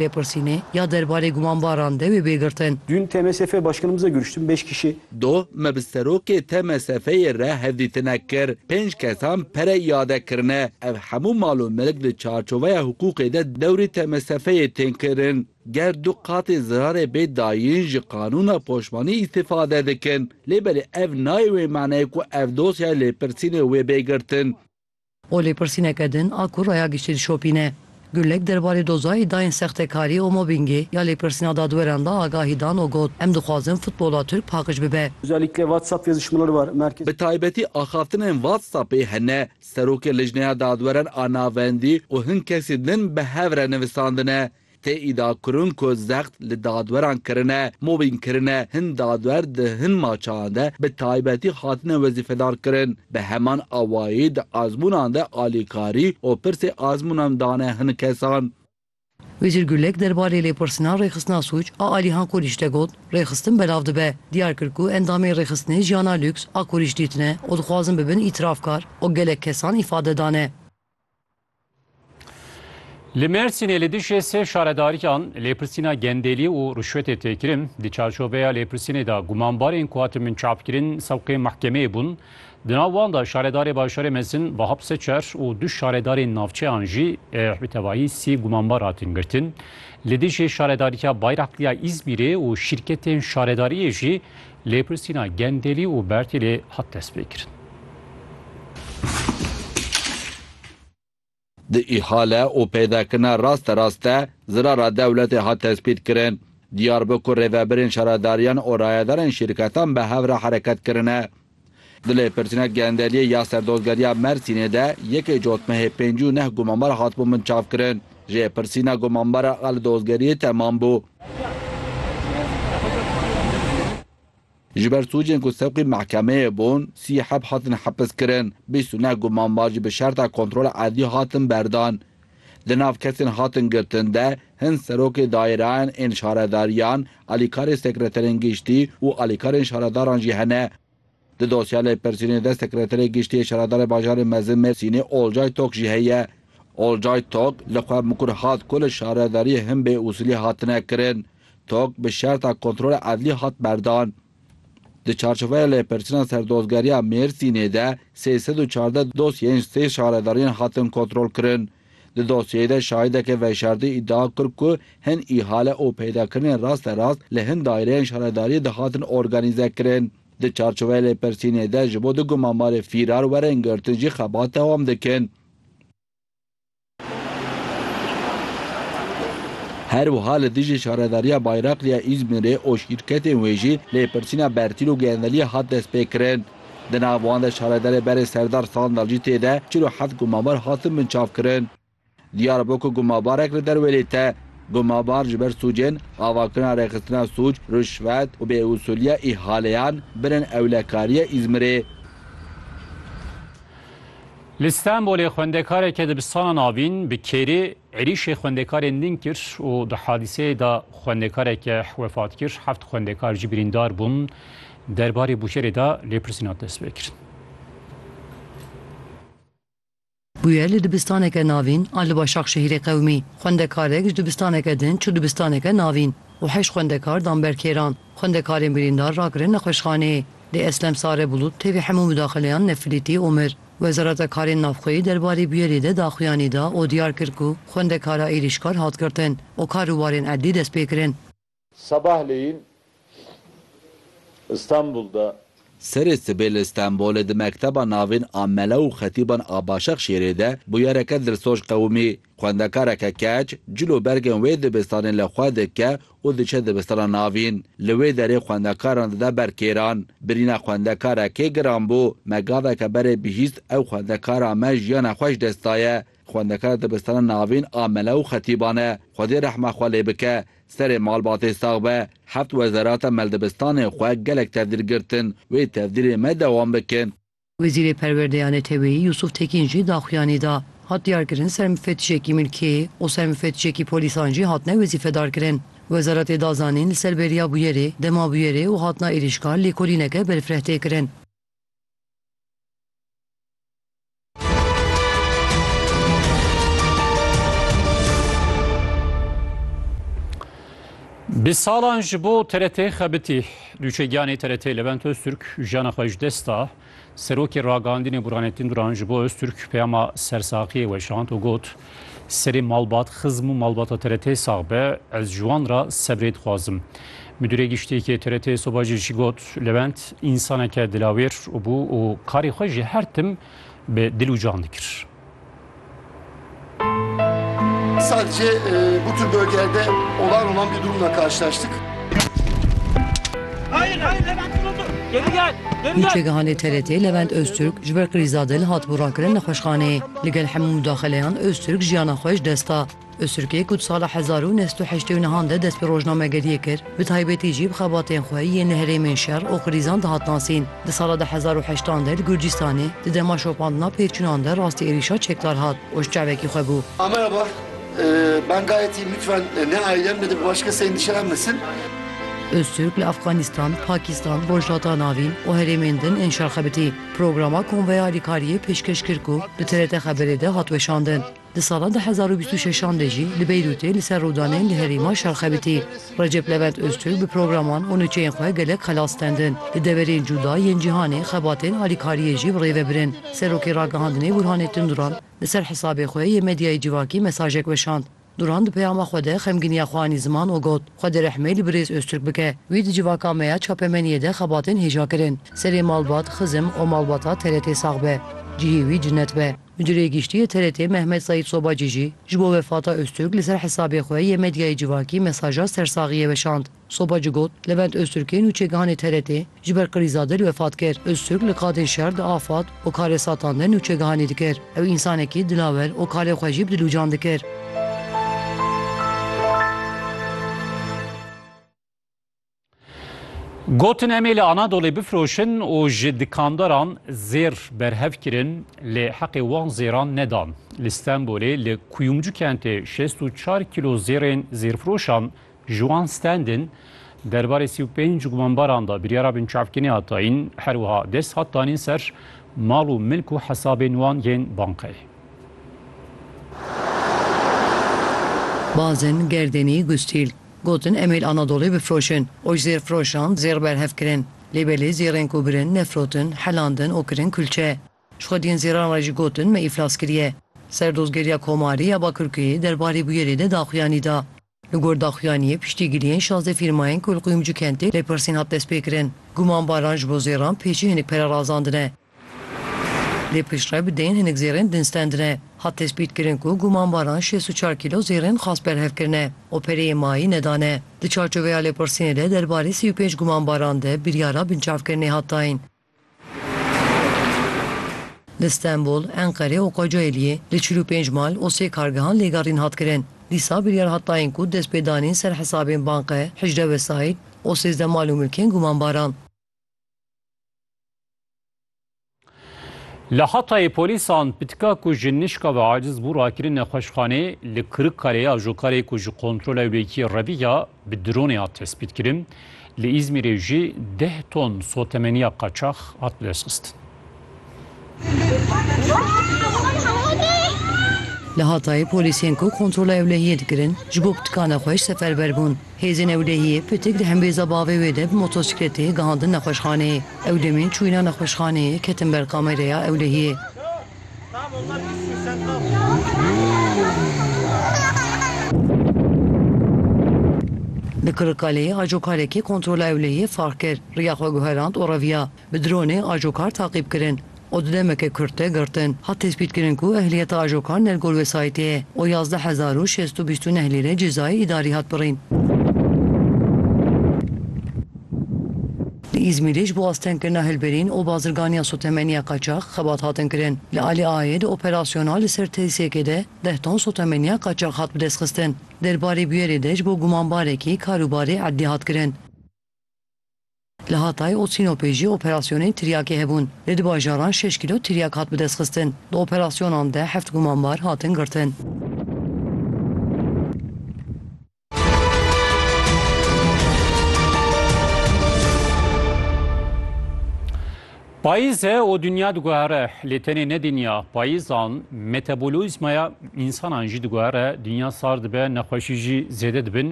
Lêpirsînê ya derbarê gumanbaran dewê bê girtin. Dün TMSF Başkanımızla görüştüm, beş kişi. Do me bi serokê TMSF'ê re hevdîtine kir. Pênc kesan pere iade kirine. Ev hemû mal û milk di çarçoveya hiqûqê de dewrî TMSF'ê tên kirin. Ger du qatê zirarê bê dayîn ji qanûna poşmanî îstîfade dikin. Lê belê ev nayê wê maneyê ku ev dosyaya lêpirsînê wê bê girtin. Û lêpirsîneke din a ku raya giştî dişopîne. Gulek derbarê doza îdayên sextekarî û mobîngê ya lêpirsîna dadweran de agahî dan û got, Em dixwazin futbola Tirk paqij bibe. Bi taybetî axaftinên WhatsAppê hene. Serokê Lijneya Dadweran a Navendî û hin kesî din bi hev re nivîsandine. Tê îdiakirin ku zext li dadweran kirine, mobîng kirine, hin dadwer di hin maçan de bi taybetî hatine wezîfedarkirin. Bi heman awayî di azmûnan de alîkarî û pirsê azmûnan dane hin kesan. Wezîr Gulek derbarê lêpirsina rêxistina sûc a Alîhan Kurîş de got, Rêxistin belav dibe. Diyar kir ku endamên rêxistinê jiyana lûks a Kurîş dîtine û dixwazin bibin îtirafkar û gelek kesan îfade dane. Li Mêrsînê li dijî sê şaredariyan lêpirsîna gendelî û rişwetê tê kirin. Di çarçoveya lêpirsînê de gumanbarên ku hatin min çapkirin sewqê mehkemeyê bûn. Di nav wan de şaredarê Bajarê Mezin Vahap Seçer û du şaredarên navçeyan jî bi tevayî sî gumanbar hatin girtin. Li dijî şaredariya Bayraxliya Îzmîrê û şîrketên şaredariyê jî Lêpirsîna Gendelî û Bertêlê hat destpêkirin. Di îhale û peydakirina rasterrast de zirara dewletê hat destpêkirin. Diyar bû ku rêvebirên şaredariyan û rayedarên şîrketan bi hev re hereket kirine. Di lêpirtîna genderiyê ya Serdozgeriya Mersînê de yekê cotmehê pêncî û neh gumanbar hatibûn binçavkirin. Jêpirsîna gumanbara qal dozgeriyê temam bû. Ji ber sûcên ku sewqî mehkemeyê bûn, sî heb hatin hepiskirin, bîst û neh gumanbar jî bi şerta kontrola erdî hatin berdan. Di nav kesên hatin girtin de hin serokê dayîrayan ên şaredariyan, alîkarê sekreterên giştî û alîkarên şaredaran jî hene. Di dosya lêpirsînê de sekreterê giştî yê şaredarê bajarê mezin Mêrsînê Olcay Tok jî heye. Olcay Tok li xwe mikur hat ku li şaredariyê hin bêusûlî hatine kirin. Tok bi şerta kontrola edlî hat berdan. Di çarçoveya lêpirçina Serdozgeriya Mêrsînê de sê sed û çardeh dosyeyên sê şaredariyên hatin kontrolkirin. Di dosyeyê de şahideke veşartî îdia kir ku hin îhale û peydakirinên rasterast li hin daîreyên şaredariyê de hatin organîzekirin. Di çarçoveya lêpirsînê de ji bo du gumamarê fîrar werin girtin jî xebat dewam dikin. Her wiha li dijî Şaredariya Bayraqliya Îzmîrê û şîrketên wê jî lêpirsîna bertîl û gendeliyê hat destpêkirin. Di nav wan de şaredarê berê Serdar Sandal jî tê de çil û heft gumabar hatin binçavkirin. Diyar bû ku gumabarek li derwêlê te. Gumabar ji ber sûcên, avakirina rêxistina sûc, rûşvet û bêusûliya îhaleyan bin in ewlekariya Îzmîrê. Li Stenbolê xwendekareke dibistana navîn bi kêrê êrîşê xwendekarên din kir û di hadîseyê de xwendekareke wefat kir, heft xwendekar jî birîndar bûn. Derbarê bûyerê de lêpirsîn hat destpêkirin. Bûyer li dibistaneke navîn a li Başakşehîrê qewimî. Xwendekarek ji dibistaneke din çû dibistaneke navîn û heşt xwendekar dan ber kêran. Xwendekarên birîndar rakirin nexweşxanê. Lê Eslem Sare Bulut tevî hemû mudaxileyan nefilîtî û mir. Wezareta Karên Navxweyî derbarê bûyerê de daxuyanî da û diyar kir ku xwendekara êrîşkar hat girtin û kar û barên erdî destpêkirin. Sabahleyin, Stenbol'da Serê sibê li Stenbolê di mekteba navîn a Mele û Xetîban a Başexşîyerê de bûyereke dilsoz qewimî. Xwendekareke keç cil û bergên wê dibistanê li xwe dike û diçe dibistana navîn. Li wê derê xwendekaran dide ber kêran. Birîna xwendekarekê giran bû. Me gaveke berê bihîst ew xwendekara me jiyana xwe ji dest daye. Xwendekara dibistana navîn a Mele û Xetîban e. Xwedê rehma xwe lê bike. Serê malbatê sax be, heft wezarata mel dibistanê xwe gelek tevdîr girtin, wê tevdîrê me dewam bike. Wezîrê Perwerdeyê Neteweyî Yûsûf Tekîn jî daxuyanî da. Hat diyarkirin ser mufetişekî milkê û ser mufetişekî polîsan jî hatine wezîfedarkirin. Wezaretê da zanîn li ser beriya bûyerê, dema bûyerê û hatina êrîşkar lêkolîneke berfireh tê kirin. Bi salan ji bo TRT xebitî nûçegiyanê TRT Levent Öztürk jiyana xwe ji dest da. Serokê ragihandînê Burhanettin Duran ji bo Öztürk peyama sersaxiyê weşand û got Serê malbat xizm û malbata TRT'ê sax be, ez ji wan re sebrê dixwazim. Midûrê Giştîyekê TRT'ê Sobajî jî got, Lewend însaneke dilawêr bû û karê xwe jî her tim bi dil û can dikir. Sadece bu tür bölgelerde olağan olan bir durumla karşılaştık. Hayır, hayır Levent dur dur. Geri gel, geri gel. Nûçegihanê TRT'ê Levent Öztürk ji ber krîza dil hatibû rakirin nexweşxaneyê. Li gel hemû mudaxeleyan Ozturk jiyana xwe ji dest da. Ozturkê ku di sala hezar û neh sed û heştê û nihan de dest bi rojnamegeriyê kir, bi taybetî jî bi xebatên xwe yên li herêmên şer û krîzan dihat nasîn. Di sala du hezar û heşt an de li Gurcîstanê di dema şopandina pêçûnan de rastî êrîşa çekdar hat û ji çavekî xwe bû. A merhaba, ben gayetî lütfen ne ailem ne de bi başka kesê endişelen mesin. Ozturk li Afganistan, Pakistan, Rojhilata Navîn û herêmên din ên şer xebitî. Programa Konveya Alîkariyê pêşkêş kir ku di TRT Xeberê de hat weşandin. Di sala du hezar û bîst û şeş an de jî li Beyrûtê li ser rûdanên li herêma şer xebitî. Recep Levent Ozturk bi programan û nûçeyên xwe gelek xelas stendin. Di deverên cûda yên cîhanê xebatên alîkariyê jî bi rê ve birin. Serokê Ragihandinê Burhanê Tunduran li ser hisabê xwe yê medyayê civakî mesajek weşand. Duran di peyama xwe de xemginiya xwe anî ziman û got, Xwedê rehmê li birêz Ozturk bike. Wî di civaka me ya çapemeniyê de xebatên hêja kirin. Serê malbat xizim û malbata TRT'ê sax be. Cihê wî cinet be. Mudirê Giştî yê TRT'ê Mehmet Saîd Sobacî jî ji bo wefata Ozturk li ser hesabê xwe yê medyayê civakî mesaja sersaxiyê weşand. Soba ci got, Levent Ozturk ê nûçegihanê TRT'ê ji ber krîza dil wefat kir. Ozturk li qadên şer di afad û karesatan de nûçegihanê dikir. Ew însanekî dilawer û kalê xwe jî bi dilûcan dikir. Gotin em ê li Anadolê bifiroşin û ji dikandaran zêr berhev kirin lê heqê wan zêran nedan. Li Stenbolê li Kuyumcu kentê şêst û çar kîlo zêrên zêrfiroşan Juan Standen derbarê sî û pênc gumanbaran de biryara binçavkirînê hat dayîn, her wiha dest hat danîn ser mal û milk û hesabên wan yên bankayê. Bazin, Gerdênî, Gustîl, gotin em ê li Anadolê bifroşin û ji zêrfiroşan zêr berhev kirin. Lê belê zêrên ku birin, nefrotin, helandin û kirin kulçe. Ji xwediyên zêran re jî gotin me îflas kiriye. Serdozgeriya Komarî ya Bakirkuyê derbarê bûyerê de daxuyanî da. Li gor daxuyaniyê piştîgiriyên şazdeh fîrmayên ku li Quyumcu kentê lêpirsîn hat destpêkirin, gumanbaran ji bo zêran pêçî hinek pere razandine. Lê piştre bi deyên hinek zêrên din stendine. Hat tespîtkirin ku gumanbaran şêst û çar kîlo zêrên xas berhev kirine û pereyê mayî nedane. Di çarçoveya lêpirsînê de derbarê sî û pênc gumanbaran de biryara binçavkirinê hat dayîn. Li Stenbol, Enqere û Kocaeliyê li çil û pênc mal û sê kargehan lêgerîn hat kirin. Dîsa biryar hat dayîn ku destpêdanîn ser hesabên banqe, hicde wesayît û sêzdeh mal û milkên gumanbaran. Li Hatayê polîsan pitika ku ji nişka ve aciz bû rakirine nexweşxanê, li Kirikkalê ajokarê ku ji kontrola wekî Revî ya bi dronê hat tespîtkirin, li Îzmîrê jî deh ton sotemeniya qaçax hat bidestxistin. Li Hatayê polîsên ku kontrola ewlehiyê dikirin ji bo pitikane xweş seferber bûn. Hêzên ewlehiyê pitik di hembêza bavê wê de bi motosîkletê gihandin nexweşxaneyê. Ew demên çûyîna nexweşxaneyê ketin ber kamereya ewlehiyê. Li Kirikkaleyê acokarekî kontrola ewlehiyê fehr kir, riya xwe guherand û reviya. Bi dronê acokar taqîb kirin û di demeke kurt de girtin. Hat tespîtkirin ku ehliyeta acokar nergol wesayîtê ye û yazdeh hezar û şêst û bîst û neh lîre cezayê îdarî hat birîn. Li Îzmîrê ji bo astengkirina hilberîn û bazirganiya sotemeniya qaçax xebat hatin kirin. Li Alî Aayê di operasyona li ser tesîsekê de deh ton sotemeniya qaçax hat bidestxistin. Derbarê bûyerê de ji bo gumanbarekî karûbarê erdî hat kirin. Li Hatay û Sînopê jî operasyonên tiryakê hebûn. Li du bajaran şeş kîlo tiryak hat bidestxistin. Di operasyonan de heft gumanbar hatin girtin. Payîz e û dinya diguhere lê tenê ne dinya payîzan metabolîzmaya însanan jî diguhere, dinya sar dibe, nexweşî jî zêde dibin.